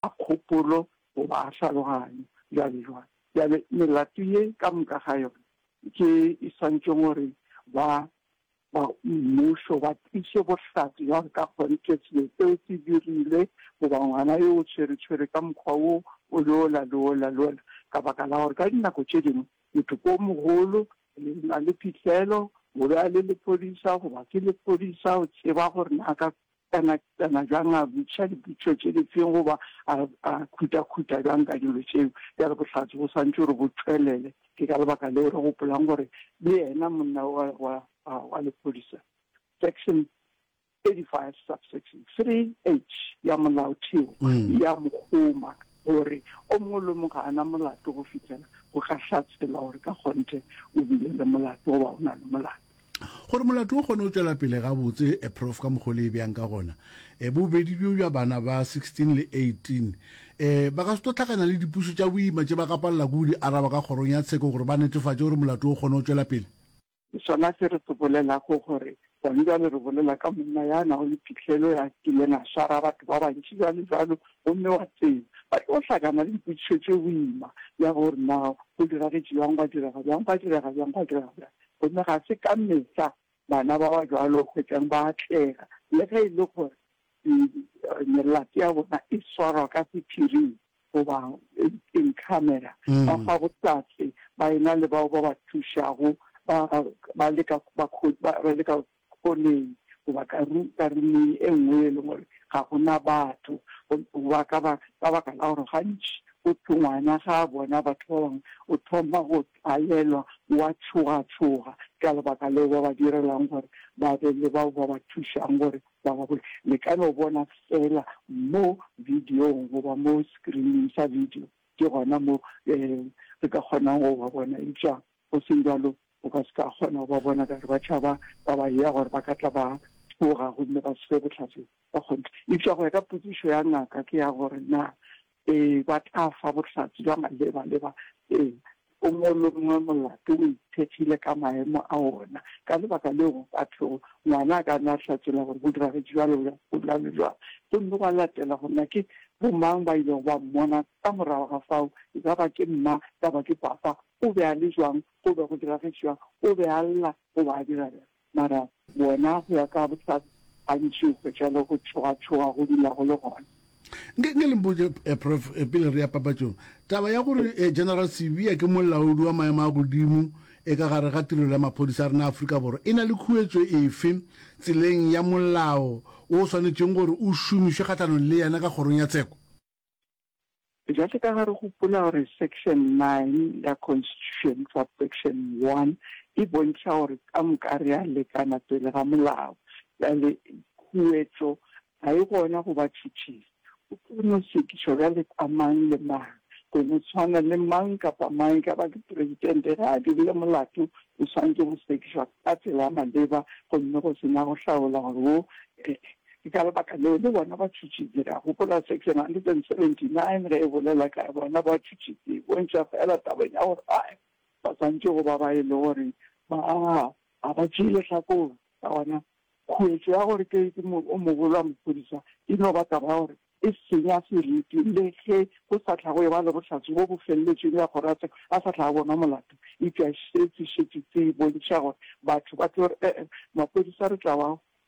a kgopolo goba a tlhaloganyo, bjalojwalo. Bjale, melato ye ka moka ga yona ke e swantšwe gore ba, ba mmušo ba tliše bohlatse bja gore ka kgone ke selo seo se dirile, goba ngwana yo o tshweretshwere ka mokgwa wo o le ola le ola le ola, ka baka la gore ka dinako tše dingwe motho ko mogolo le na le phihlelo o be a le lephodisa goba ke lephodisa o tseba gore na ka a nakišana bjang, a botšiša dipotšišo tše di feng goba a khutha-khutha bjang ka dilo tšeo. Bjale bohlatse bo swantšwe gore bo tšwelele. Ke ka lebaka leo re gopolang gore le yena monna wa lephodisa, Section 35 subsection 3H ya Molaotheo ya mo kgoma gore o mongwe le o mongwe ga a na molato go fihlela go ka hlatselwa gore ka kgonthe o bile le molato goba o na le molato. Gore molato o kgone go tšwela pele gabotse, Prof. Ka mokgwa o le e bjang ka gona, bobedi bjo bja bana ba 16 le 18 ba ka se tlo hlakana le dipuso tša boima tše ba ka palela ke go di araba ka kgorong ya tsheko gore ba netefatše gore molato o kgone go tšwela pele. Ke sona se re se bolelago gore gona bjale re bolela ka monna ya nago le phihlelo, ya kileng a swara batho ba bantši bjalojalo gomme wa tseba ba tlo hlakana le dipotšišo tše boima bja gore na go diragetše bjang, gwa direga bjang, gwa direga bjang, gwa direga bjang. Gomme ga se ka mehla bana ba ba bjalo o hwetšang ba atlega, le ge e le gore melato ya bona e swarwa ka sephiring goba in camera, ba fa bohlatse ba ena le bao ba ba thušago, ba leka go Kgoleng, goba ka ru, ka ruming e nngwe ye e leng gore ga go na batho, go, goba ka ba, ka baka la gore gantši go thwe ngwana ga a bona batho ba bangwe o thoma go tlwaelwa, o a tšhogatšhoga. Ke ka lebaka leo ba ba direlang gore ba be le bao ba ba thušang gore ba ba bole. Le ka no bona feela mo bidiong goba mo sekirining sa bidio, ke gona mo, ee, re ka kgonang go ba bona. Eupša Go seng bjalo, o ka se ka kgona go ba bona ka gore ba tšhaba ba ba yea gore ba ka tla ba tšhoga gomme ba swe bohlatse ba kgonthe. Eupša go ya ka potšišo ya ngaka ke ya gore na ee, ba tla fa bohlatse bja maleba-leba. Ee, o mongwe le o mongwe molato o ikgethile ka maemo a wona. Ka lebaka leo go ka thwego ngwana a ka na a hlatholla gore go diragetše bjalo bjang, go bjalo bjang, gomme gwa latela gore na ke bomang ba ilego ba mmona ka morago ga fao, e ka ba ke mma kapa ke papa O be a le bjang? Go be go diragetše bjang? O be a lla goba a dira bjang? Mara bona, go ya ka bohlatse, gantši o hwetša le go tšhogatšhoga go dula go le gona. Nke, nke le mpotše, Prof, pele re ya papatšong, taba ya gore General Sibiya ke molaodi wa maemo a godimo e ka gare ga Tirelo ya Maphodisa a rena a Afrika Borwa e na le khuetšo efe tseleng ya molao wo o swanetšeng gore o šomišwe kgahlanong le yena ka Kgorong ya Tsheko? Bjale ka ge re gopola gore Section 9 ya Constitution, Subsection 1, e bontšha gore ka moka re a lekana pele ga molao, bjale khuetšo ga e gona go ba tšhutšisi. O tlo no sekišwa bjale ka mang le mang, go no tshwana le mang kapa mang, e ka ba ke Presidente, ge a dirile molato, o swanetše go sekišwa ka tsela ya maleba gomme go se na go hlaola gore wo, Ke ka lebaka leo le bona ba tšhutšitse. Ka gopola section 179 ge e bolela ka bona ba tšhutšitse, e bontšha feela tabeng ya gore a ba swantše go ba ba e le gore ba ga ba tšee lehlakore. Ka gona, khuetšo ya gore ke o mogolo wa maphodisa e no ba taba ya gore e senya seriti le ge go sa hlago eba le bohlatse bjo bo feleletšeng bja gore a sa hlaga bonwa molato. Eupša se se šetše se bontšha gore batho ba tlo re, ee, maphodisa re tla ba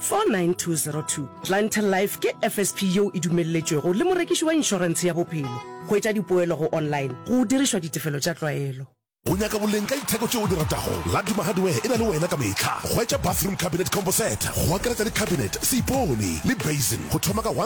49202 Planter Life ke FSP yeo e dumelletšwego le morekiši wa inšorentshe ya bophelo. Hwetša dipoelo go online go dirišwa ditefelo tša tlwaelo. O nyaka boleng ka ditheko tše o di ratago? Laduma Hardware e na le wena ka mehla. Hwetša bathroom cabinet combo set go akaretša le cabinet, seipone le basin go thoma ka